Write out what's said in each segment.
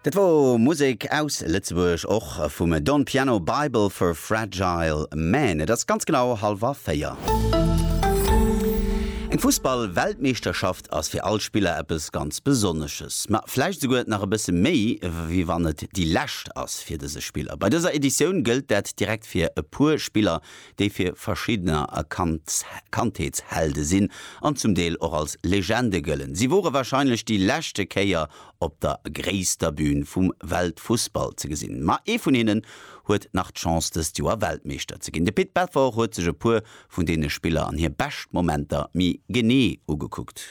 Dat wor Musek aus Lëtzebuerg, och vum Don Piano, Bible for Fragile Men. Et ass ganz genau halwer 4. Eng Fussball-Weltmeeschterschaft ass fir all Spiller eppes ganz Besonnesches. Ma vläicht esouguer nach e bësse méi, wéi wann et déi lescht ass fir dëse Spiller. Bei dëser Editioun gëllt dat direkt fir e puer Spiller, déi fir verschiddener erkannt Kandheetshelde sinn an zum Deel och als Legende gëllen. Si wore wahrscheinlech déi leschte Kéier op der gréisster Bün vum Weltfussball ze gesinn. Ma ee vun hinnen huet nach d'Chance dëst Joer Weltmeeschter ze ginn. De Pit Belfort huet sech e puer vun deene Spiller an hir bescht Momenter méi genee ugekuckt.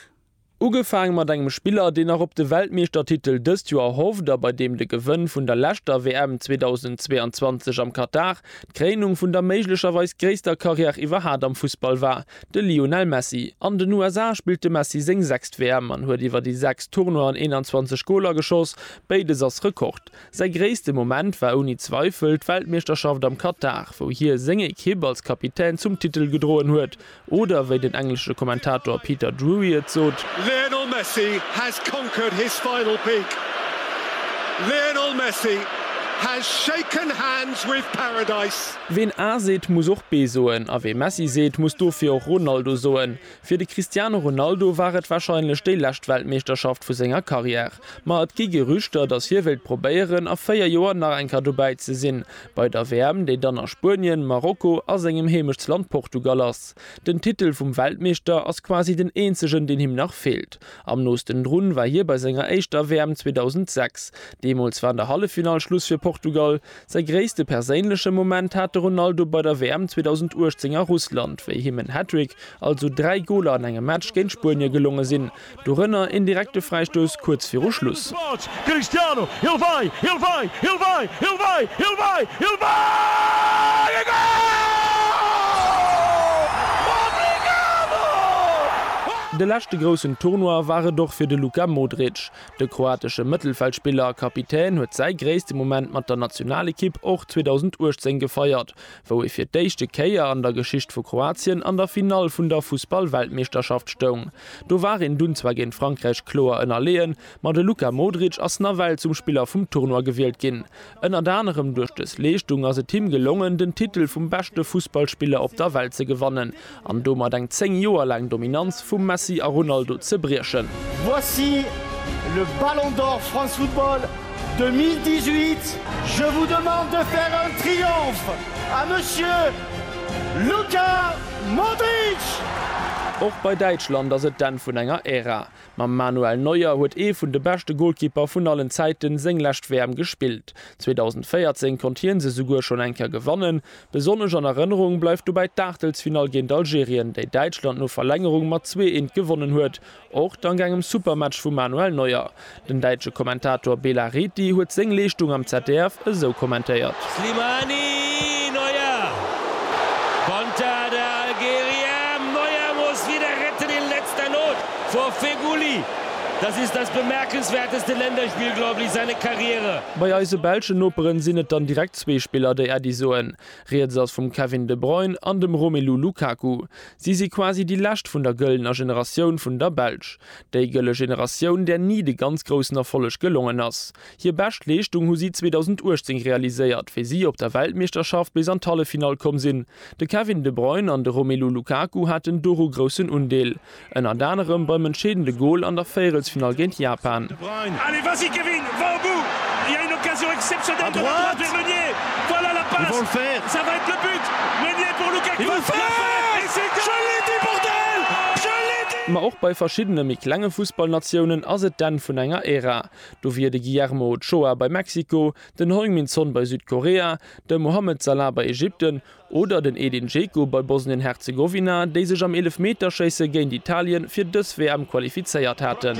Ugefaang mat engem Spiller, deen nach op de Weltmeeschtertitel dëst Joer hofft a bei deem de Gewënn vun der leschter WM 2022 am Katar d'Kréinung vun der méiglecherweis gréisster Karriär iwwerhat am Fussball war, de Lionel Messi. An den USA spillt de Messi seng sechst WM an huet iwwer déi sechs Tournoien 21 Goler geschoss, béides ass Rekord. Säi gréisste Moment war ouni Zweifel d'Weltmeeschterschaft am Katar, wou hie seng Ekipp als Kapitän zum Titel gedroen huet. Oder wéi den englesche Kommentator Peter Drury et sot. Lionel Messi has conquered his final peak. Lionel Messi has shaken hands with paradise. Ween A seet, muss och B soen, a wee Messi seet, muss dofir och Ronaldo soen. Fir de Cristiano Ronaldo war et warscheinlech déi lescht Weltmeeschterschaft vu senger Karriär. Ma et gi Gerüchter, datt hie wéilt probéieren, a 4 Joer nach eng Kéier dobäi ze sinn. Bei der WM, déi dann a Spuenien, Marokko a sengem Heemechtsland Portugal ass. Den Titel vum Weltmeeschter ass quasi den eenzegen, deen him nach feelt. Am noosten drun war hie bei senger éischter WM 2006. Deemools war an der Halleffinall Schluss fir Portugal. Säi gréisste perséinleche Moment hat de Ronaldo bei der WM 2018 a Russland, wéi him en Hattrick, also dräi Goler an engem Match, géint Spuenie gelonge sinn. Dorënner een direkte Fräistouss kuerz viru Schluss. De leschte groussen Tournoi war et och fir de Luka Modric. De kroatesche Mëttelfeldspiller a Kapitän huet säi gréisste Moment mat der Nationalekipp och 2018 gefeiert, wou ee fir d'éischte Kéier an der Geschicht vu Kroatien an der Finall vun der Fussballweltmeeschterschaft stoung. Do war een dunn zwar géint Frankräich kloer ënnerleeën, ma de Luka Modric ass nawell zum Spiller vum Tournoi gewielt ginn. Ënnert anerem duerch dës Leeschtung ass et him gelongen, den Titel vum beschte Fussballspiller op der Welt ze gewannen an domat eng 10 Joer laang Dominanz vum Messi a Ronaldo ze briechen. Voici le Ballon d'Or France Football 2018. Je vous demande de faire un triomphe à Monsieur Luka. Modric! Och bei Däitschland ass et d'Enn vun enger Ära. Mam Manuel Neuer huet ee vun de beschte Golkipper vun allen Zäiten seng lescht WM gespillt. 2014 konnt hien se souguer schonn eng Kéier gewannen. Besonnesch an Erënnerung bleift dobäi d'Aachtelsfinall géint Algerien, déi Däitschland no Verlängerung mat 2, 1 gewonnen huet. Och dank engem super Match vum Manuel Neuer. Den däitsche Kommentator Bela Reti huet seng Leeschtung am ZDF esou kommentéiert. Slimani! Neuer! Konter der Algerien! Neuer muss wieder retten in letzter Not vor Feghouli! Das ist das bemerkenswerteste Länderspiel, glaube ich, seine Karriere! Bei eise belschen Noperen sinn et dann direkt zwee Spiller, déi Äddi soen. Rieds ass vum Kevin De Bruyne an dem Romelu Lukaku. Si si quasi déi lescht vun der gëllener Generatioun vun der Belsch. Déi gëlle Generatioun, där ni de ganz groussen Erfolleg gelongen ass. Hir bescht Leeschtung hu si 2018 realiséiert, wéi si op der Weltmeeschterschaft bis an d'Halleffinall komm sinn. De Kevin De Bruyne an de Romelu Lukaku haten doru groussen Undeel, ënnert anerem beim entscheedende Gol an der Véierelsfinall géint Japan. Brun. Allez vas-y Kevin, va au bout, il y a une occasion exceptionnelle de la part de Meunier, voilà la passe, ça va être le but, Meunier pour Lukaku, la frappe et c'est un but! Ma och bei verschiddene méi klenge Fussballnatiounen ass et d'Enn vun enger Ära. Do wier de Guillermo Ochoa bei Mexiko, den Heung-Min Son bei Südkorea, de Mohamed Salah bei Ägypten Oder den Edin Dzeko bei Bosnien-Herzegowina, déi sech am Eelefmeterschéisse géint Italien fir dës WM qualifizéiert haten.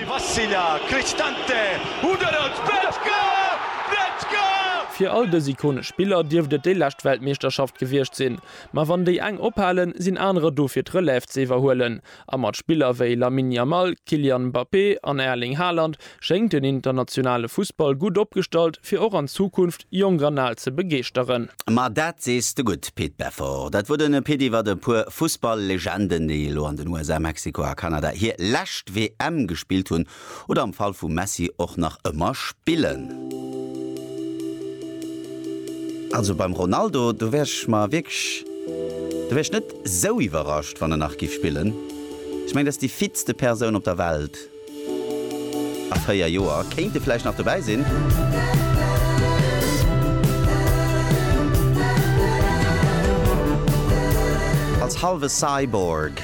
Fir all dës ikonesch Spiller dierft et déi lescht Weltmeeschterschaft gewiescht sinn. Ma wann déi eng ophalen, sinn anerer do fir d'Relève ze iwwerhuelen. A mat Spiller wéi Lamine Yamal, Kylian Mbappé an Erling Haaland schéngt den internationale Fussball gutt opgestallt, fir och an Zukunft jonk an al ze begeeschteren. Ma dat sees de gutt, Pit Beffort. Dat wor den Pit iwwert e puer Fussball-Legenden, déi elo an den USA, Mexiko a Kanada hir lescht WM gespillt hunn. Oder am Fall vum Messi och nach ëmmer spillen. Also beim Ronaldo, do wär ech mer wierklech, do wär ech net esou iwwerrascht, wann en nach giff spillen. Ech mengen, dat ass déi fitste Persoun op der Welt. A 4 Joer kéint e vläicht nach dobäi sinn. Als halwe Cyborg.